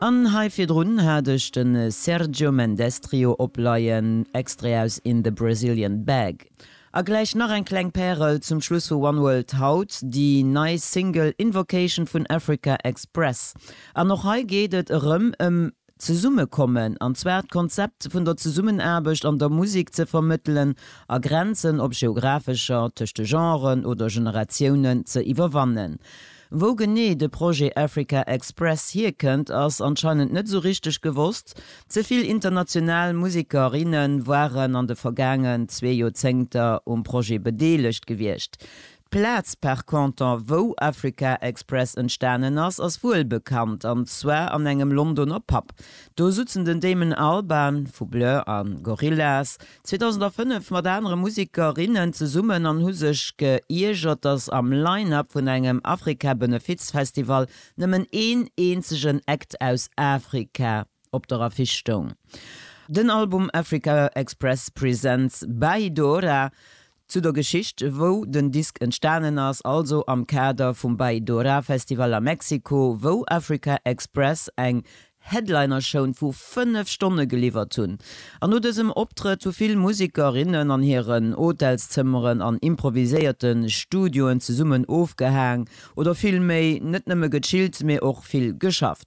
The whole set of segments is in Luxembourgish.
An hei virdrun hat ech de Sergio Mendes Trio opleien, Extrait aus In the Brazilian Bag. A gläich nach eng kleng Pärel zum Schluss vu One World haut, déi nei Single Invocation vun Africa Express. An och hei geet et erëm ëm Zesummekommen, an zwar d'Konzept vun der Zesummenaarbecht an der Musek ze vermëttelen a Grenzen, ob geographescher, tëscht de Genren oder Generatiounen, ze iwwerwannen. Wou genee de Projet Africa Express hierkënnt, ass anscheinend net esou richteg gewosst. Ze vill international Museker, inne waren an de vergaangen zwee Joerzéngter um Projet bedeelegt gewiescht. D'Plaz par contre, wou Africa Express entstanen ass, ass wuel bekannt, an zwar an engem Londoner Pub. Do sutzen den Damon Albarn vu Blur a Gorillaz, 2005 mat anere Musiker, rinnen zesummen an hu sech ge iergert, dass am Line-Up vun engem Afrika-Benefiz-Festival nëmmen een eenzegen Act aus Afrika op der Affiche stoung. Den Album Africa Express Presents By Dora Zu der Geschicht wou den Disk entstanen ass, also am Kader vum Bay Dora Festival a Mexiko, wou Africa Express eng Headlinershown vu 5 Stonne geliwwert hunn. An no dësem Optrëtt hu vill Musiker, innen an hiren Hotelszëmmeren an improviséierte Studioen zesummen ofgehaang oder vill méi net nëmme gechillt, mee och vill geschaff.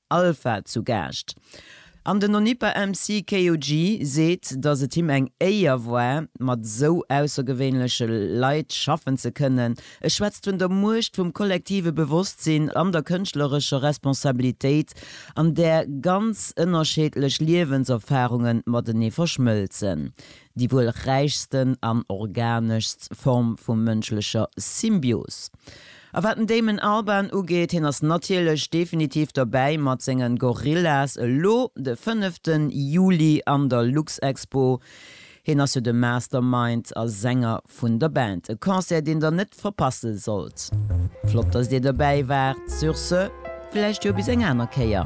Alpha zu Gaascht an den Onipa-MC KOG seet, datt et him eng Éier war, mat esou aussergewéinleche Leit schaffen ze kënnen. E schwätzt vun der Muecht vum kollektive Bewosstsinn an der kënschtlerescher Responsabilitéit, an där ganz ënnerscheedlech Liewenserfarunge matenee verschmëlzen. déi wuel räichsten an organeschst Form vu mënschlecher Symbios. A wat den Damon Albarn ugeet, hien ass natierlech definitiv dobäi mat senge Gorillaz, elo de fënnefte Juli an der Luxexpo. Hien ass jo de Mastermind a Sänger Vun der Band, e Concert deen der net verpasse sollt. Flott dass dir dobäi waart, sur ce, vläicht jo bis eng aner Kéier.